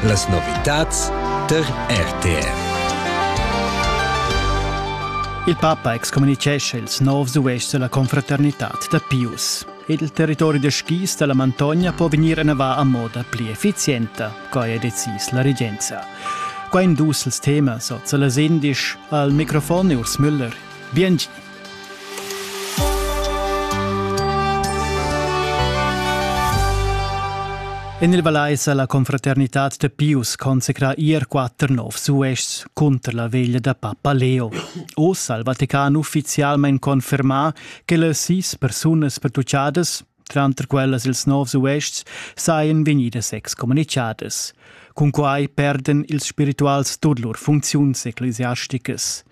Las novitads tar RTR. Il papa excommunitgescha ils novs uestgs dalla confraternitad da Pius. Il territori da skis dalla Mantogna può vegnir ennavà a moda pli effizienta, quai ha decis la regenza. Qua in dus els temas, oz las indisch, al microfon Urs Müller. Bien En il Valais ha la confraternitad da Pius consacrà ier quatter novs uestgs cunter la veglia da papa Leo. Oz ha il Vatican uffizialmain confermà che las sis persunas pertuccadas Tranter quellas ils novs uests sajan vegnidas excommunichadas. Cunquai perdan ils spirituals tut lur funcziuns ecclesiasticas.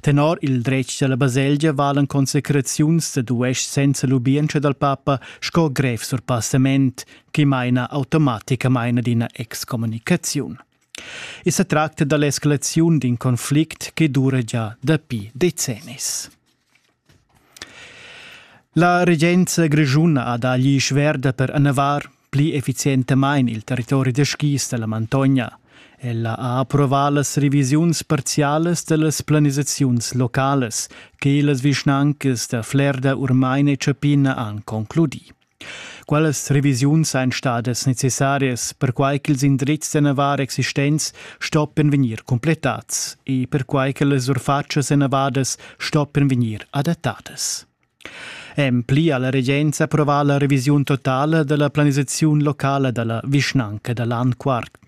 Tenor il dretg dalla baselgia valan consecraziuns dad uests senza lubientscha dal papa sco grev surpassament che maina automaticamain ad ina excommunicaziun. E se tracta dall'escalaziun d'in conflict che dura già dapi decennis. La regenza grischuna ha dà gli sverda per annavar pli efficientamain il territori da skis dalla Mantogna. Ella ha approvà las revisiuns parzialas dallas planisaziuns localas che las vischnancas da Flerda, Urmain e Ciappina han concludì. Quellas revisiuns ein stadas necessarias, perquai ch'ils indrizs da navar existents stoppien vegnir completads e perquai che las surfatschas enavadas stoppien vegnir adattadas. En pli ha la regenza approvà la revisiun totala della planisaziun locala dalla vischnanca da Landquart.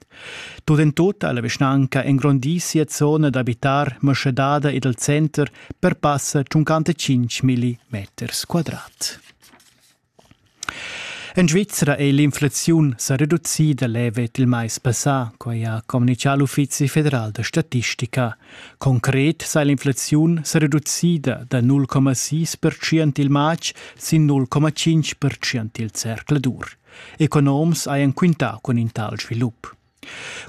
Tut en tut ha la vischnanca engrondì sia zona d'abitar maschadada ed al center per passa 55 milli meters quadrat. En Svizra è l'inflaziun sa reducida levet il mais passà, quai ha communitgà l'Uffizi federal da statistica. Concret sa l'inflaziun sa reducida da 0,6% il matg sin 0,5% il zercladur. Economs hajan quintà cun in tal svilup.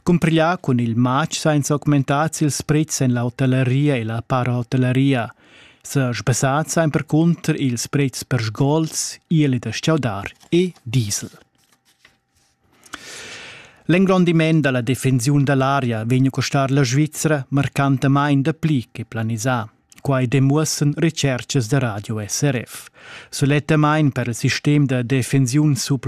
Cumpriglià cun il matg sainza augmentar ils pretschs en la hotelleria e la parahotelleria sa sbasat saimper cunter ils pretschs per sgols, ieli da stgaudar e diesel. L'engrondiment da la defensiun da l'aria vegn a costar la Svizra marcantamain dapli che planisà. Quai demuossan recerchas da radio SRF. Sulettamain per il sistem da defensiun sub